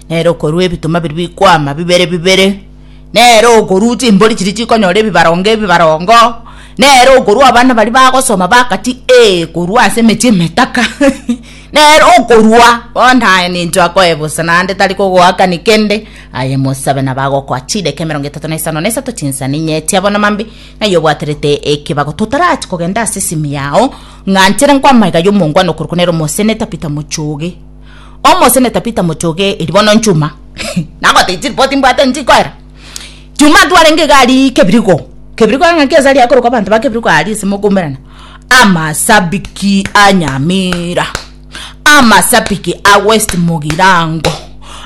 Nere okorua ebituma biria bikwama bibere bibere, nere okorua chimbori chiria chikonyora ebibarongo ebibarongo, nere okorua abana baria bagosoma bakati ee korwa ase emechie emetaka nere okorua bono aye ninto akoe bosa naende tari kogoakani kende aye mosabe nabo agokoa chideka emerongo etato na isano na isato chinsani inye echi abana mambe naiyo obwaterete ekebago totarachi kogenda ase esimi yao ng'anchire nkwamaiga yomonguano korokwo nere omosene Tabitha Mochoge. Omosene Tabitha mochoge eri bono nchuma nagotee chiripoti mbwate nchikoera chuma atwarenge iga arie kebirigo kebirigo ng'a ki asari akorokwa abanto ba kebirigo aria ase mokomerana amasabiki a nyamira amasabiki a west mogirango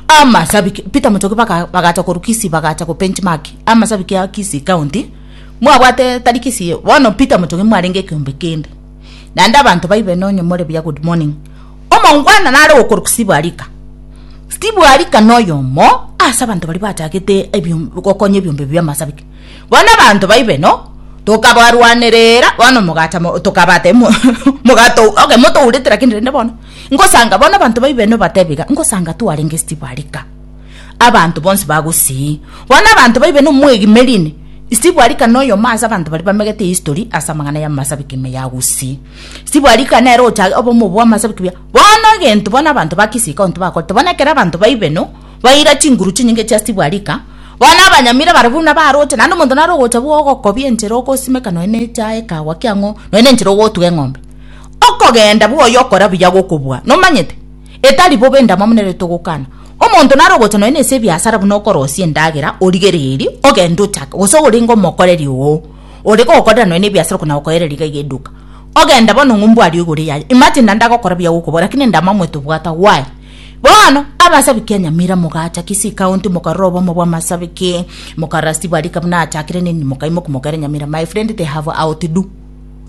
amasabiki peter mochoge baka bagacha korwa kisii bagacha go bench mark amasabiki a kisii county mwabwate tari kisii bono peter mochoge mwarenge ekeombe kende naende abanto baibe nonye more buya good morning Omongwana nare okorokwa Steve Arika. Steve Arika noyomo ase abanto baria bachagete gokonya ebiombe ebi bi'amasabiki. Bono abanto baibe no tokabarwanerera bono mogacha tokabate mogato okay motourete lakini rende bono ngosanga bono abanto baibe no batebe iga ngosanga twarenge Steve Arika abanto bonsi bagosii bono abanto baibe no mwegimerine Steve Arika noyomo ase abanto baria bamegete history ase amang'ana y'amasabiki ime ya gusii. Sibwarikana ere ochage obe omobe bw'amasabi kobua. Bono egento bono abanto ba Kisika onto bakorete, bono ekero abanto baibe no, baira chinguru chinyinge chia sibwarika, bono abanyamira baria buna baroche, naende omonto nare ogocha bwa ogokobia enchera ogosimeka nonya na echaye ekagwa kia ng'o, nonya na enchera ogotuga eng'ombe. Okogenda bwa oyo okora buya gokobua, nomanyete? Etari bobe endamwamu nere togokana. Omonto nare ogocha nonya na ase ebiasara buna okorosia endagera, origereiri, ogende ochake, gose orenge omokoreri oo. ore gokorera nonya nebiasara okona gokoereria iga iga eduka ogenda bono ng'umbu aria ogore yaye imagine naende agokora buya gokobora lakini inde amamwe tobwate why bono abasabiki nyamira mogacha kisii county mokarora obomo bwa masabiki mokarora steve arika buna achakire nini mokaimoka mokaira nyamira my friend they have outdo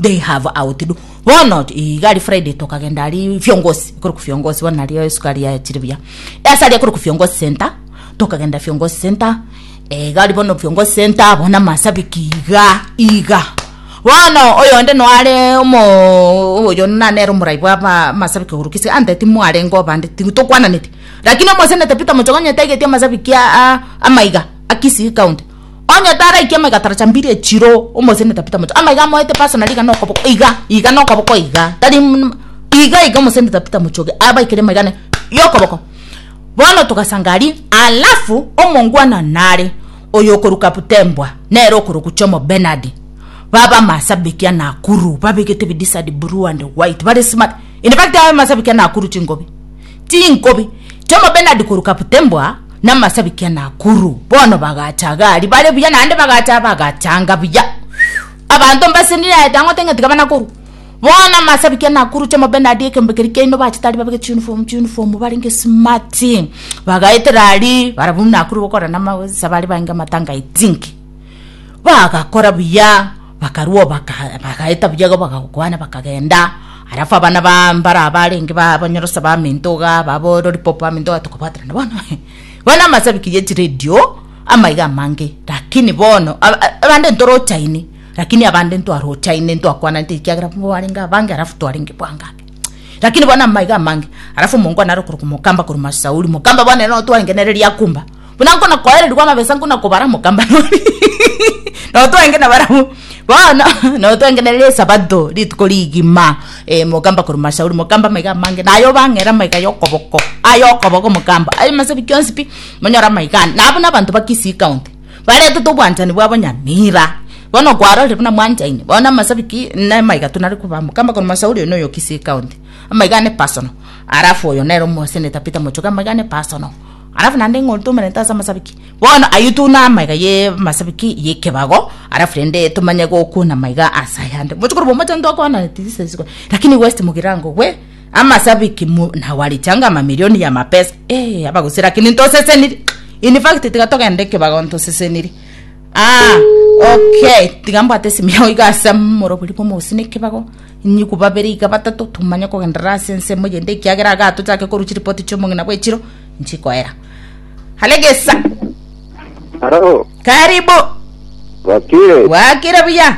they have outdo bono iga aria friday tokagenda aria fiongozi ekero fiongozi bono nario esukari yachire buya ase aria ekero fiongozi center tokagenda fiongozi center. Egari bono viongo senta abo na masabiki iga iga bono oyonde noare omo oyo nanere omorai bwa ba masabiki ogoru kisi ante timwarenge obande tigu tokwananeti lakini omosenete Peter Mochoge onye taigeti amasabiki aa amaiga a Kisii county onye taraiki amaiga taracha mbiri echiro omosenete Peter Mochoge amaiga amoete personally iga nokoboko iga iga nokoboko iga tari mm iga iga omosenete Peter Mochoge abaikire amaiga ne yokoboko. Bono togasanga aria, alafu omongwana nare oyo okoruka Butembwa, nere okorokwa Jomo Bernard, baba amasabiki a Nakuru, babegete ebidisadi blue and white, bare smart, in fact aye amasabiki a Nakuru chinkobi, chinkobi, Jomo Bernard koruka Butembwa na amasabiki a Nakuru, bono bagacha iga aria bare buya, naende bagacha bagachanga buya, abanto mbase niraete ang'ote ng'a tiga bana korwa, Bono amasabikia nakuruche mobe naria ekeombe keria kiaino bachete aria babeke chiunifomu chiunifomu barenge smati bagaetera aria barabwo nakure gokora namagosa bare bainge amatanga i think bagakora buya bakarwa baka bagaeta buya iga bagagokwana bakagenda alafu abana ba mbare abarenge ba banyorosa baminto igaa babo lolipopo baminto igaa tokobwaterana bono he bono amasabikia ya chiredio amaiga amange lakini bono aba- a- abande ntorochaine. Lakini abande ntwarochaine ntwakwananete ekiagera nigo barenge abange alafu twarenge bwangabe lakini bono amaiga amange alafu omongo anare okoroka mokamba korwa masauri mokamba bono ere notwarenge nere riakumba buna nkona koererigwa amabesa nkuna kobara mokamba nori notwarenge na barabwo bono notwarenge nere esabato rituko rigima eh, mokamba korwa masauri mokamba amaiga amange naye obang'era amaiga yokoboko ayokoboko mokamba aye masabi kionsi pi monyora amaiga ande nabo nabanto ba kisii county baretete obwanchani bwabo nyamira. Bono kwarorire buna mwanchaine, bono na amasabiki na amaiga tonare kobamo, kamba korwa Masauri oyo noyo Kisii County, amaiga ane personal, alafu oyo nere omo Senator Peter Mochoge amaiga ane personal, alafu naende ng'o tomerente ase amasabiki. Bono ayio tuna amaiga ye amasabiki ye ekebago, alafu rende tomanye gokwana amaiga ase ayande. Mochokoro bwa omochango twakoananeti this is why, lakini West Mugirango we. amasabiki mu- na warichanga amamilioni ya mapesa eh, abagusira lakini ntoseseniri in fact tiga togende ekebago ntoseseniri ah, okay tiga mbwate esimu yao iga ase morobori bwa omogusi na ekebago inyiku babere iga batato tumanye kogenderera ase ensemo eyende ekiagera iga tochake korwa chiripoti chia omong'ina bwa echiro nchikoera halegesa Haro, karibu wakire. wakire buya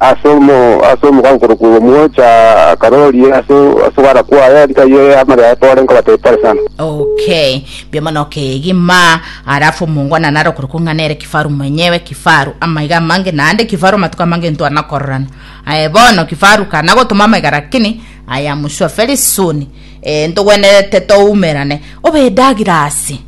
ase omo ase omoka nkorokwa Omwocha akaroria ase ase ogwara kwaye rikai amare aye pore nkobatebia pore sana. Okay, mbuya mono kegima. Alafu mungwana nare okorokwa ng'a nere kifaru mwenyewe, kifaru amaiga amange, naende kifaru amatuko amange ntwana kororana. Aye bono kifaru kana gotoma amaiga lakini I am sure very soon eh, ntogwenerete toumerane. Obe edagirasi.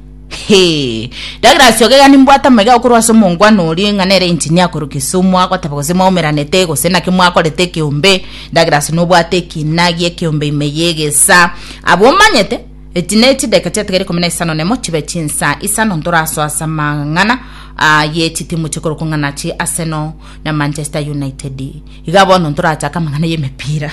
Hee! Douglas ogega nimbwate amaiga okorwa ase omongwana oria ng'a nere engineer korwa Kisumu agoteba gose mwaumeranete gose naki mwakorete ekeombe Douglas nobwate ekina giekeombe ime yegesa abwo omanyete eti ne chideka chiatigare ikomi na isano nemo chibe chinsa isano ntorasoa ase amang'ana ah, ye chitimu chikorokwa ng'a nachi Arsenal na Manchester United iga bono ntorachake amang'ana y'emepira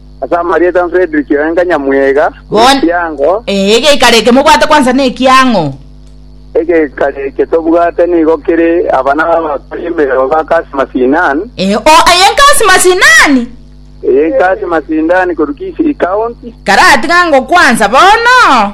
Ase amarieta Fredrick Oenga Nyamwega, Bon- Ekiango, Ee, egeikaro eke mobwate kwansa nekiang'o? Egeikaro eke tobwate nigo kere abana b'abakori emerero ba Kasi Masinan, Ee, o aye nkasi masinani? eye Kasi Masindani korwa Kisii County, Karatiga ngokwansa bono?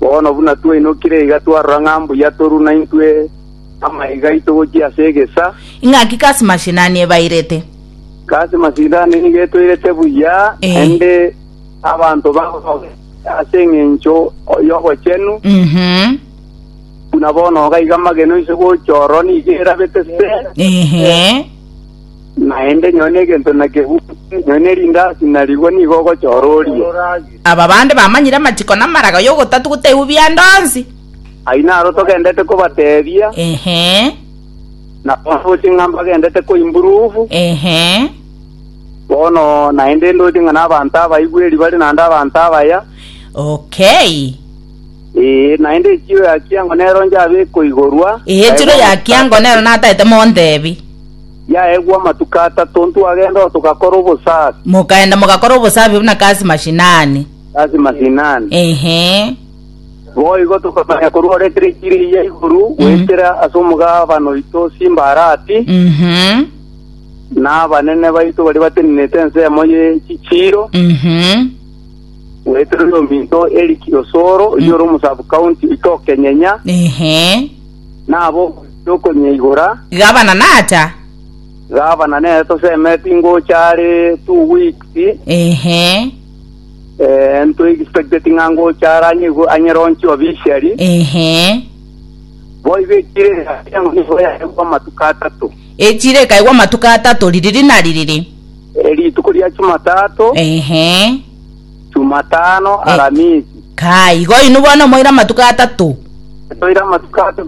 Bono buna twainokire iga twarora ng'a mbuya toru naintwe amaiga aito gochia ase egesa, Ing'aki kasi mashinani ebairete? Kasi masindani nigo etoirete buya, Eh. naende abanto bagosoga ase engencho y'obochenu, Mhm. buna bono iga amagena oise gocha oro nigo erabete se. Ehe. Naende nyoo negento nakegutu, nyoo ne rindasi na rigwa nigo ogochora orie. Aba bande bamanyire amachiko na amaraga y'ogotatu gotaigwa bianda onsi. Ayio naro togendete kobateebia. Ehe. Na bono roche ng'a mbagendete koimburuvu. Ehe. Bono naende ndoche ng'a n'abanto abaigweri bare naende abanto abaya. Okay. Ee, naende echiro ya kiango nero njabe ekoigorwa. Ehe, echiro ya kiango nero nataete montebi. Yaegwa amatuko atato ntwagenda oo togakora obosabi Mokaenda mogakora obosabi buna kasi mashinani. ase mashinani. Ehe. Boigo tokamanya korwa ore Teresiri ya igoro goetera ase omogabano oito Simbarati, Mhm. na abanene baito baria batenenete ensemo ye chichiiro, Mhm. Naitoro yominto Eric Osoro, oyio ore omosabu county goika Okenyenya, Ehe. nabo ogochia okonyeigora. Gavana nacha. Gavana nere tosemeti ngocha are two weeks, Ehe. eh, nto expected ng'a ngocha are anyeigu- anyeronchi officially. Ehe. Boigo ekire yatiang'o nigo yaegwa amatuko atato. Echire ekaigwa amatuko atato ririri na ririri. Rituko ria Chumatato, Ehe. Chumatano, Eh. Aramisi. Kaa igo inwe bono omoire amatuko atato. Toire amatuko ato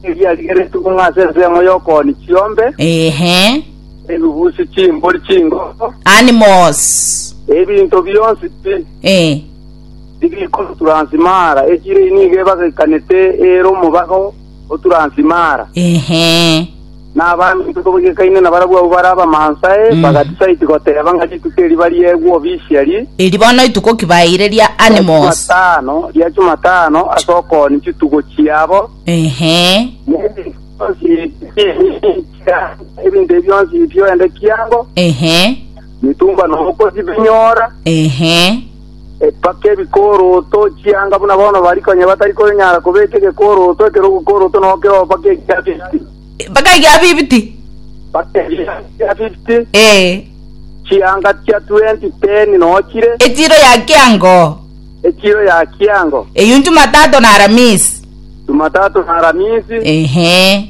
eriarigeretwe buna ase ensemo y'okooni chiombe, Ehe. ebibusi chimbori chingoko, Animals. ebinto bionsi pi- Eh. bikoturansimara echire nigo ebagakanete ere omobago Oturansimara, Ehe. na abande inko bagikaine nabarabwo abwo bare Abamansae, Mm. bagatisaiti goteba ng'a rituko eri bariegwe obisieri, Eri bono ituko ki baeire ria ria Animos. Chumatano, ria Chumatano ase okooni chitugo chiabo, Ehe. N'ebinto bionsi bia- ebinto ebi bionsi bioende kiango Ehe. mitumba nomokosi binyora Ehe. Epaka ebikooroto, chianga buna bono bari konya batari konyara kobeka egekooroto ekero ogokooroto nogo keroo mpaka egia 50. Mpaka egia 50. Mpaka egia 50. Ee. Chianga chia 20 teni nogo chire. Echiro ya kiango. Echiro ya kiango. Eyio Nchumatato na Aramisi. Nchumatato na Aramisi. Ehe.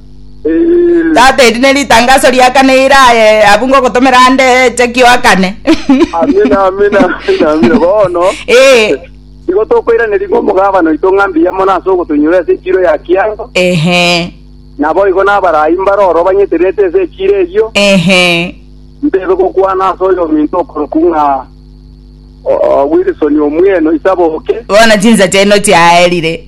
Tata, eri neritangaso riakane ira aye abwo ngogotomera ande eche kioakane. Amina, amina, amina, amina. Bono Eh, igo tokoiraneria ng'a omogabana oito ng'a mbuya mono ase ogotoinyora ase echiro ya kiango, ehe, naboigo nabarai mbare oro banyetererete ase echiro eyio, ehe. ntebe gokwana ase oyo ominto okorokwa ng'a o- o, Wilson omweno isaboke. Bono chinsa chiaino chiaerire.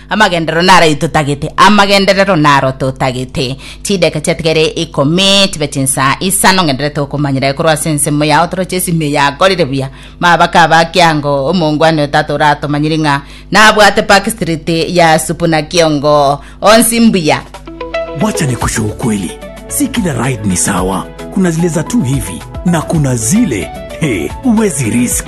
Amagenderero narayi totagete, amagenderero naro totagete. Chideka chiatige ere ikomi, chibe chinsa isano, ngenderere tokomanyera aye korwa ase ensemo yao, toroche ase ime yakorire buya. Mabaka aba kiango, omongwani o tata oratomanyiri ng'a nabwate Park Street ya Supuna kiongo onsi mbuya. Wacha nikusho ukweli si kila ride ni sawa kuna zile za tu hivi na kuna zile he uwezi risk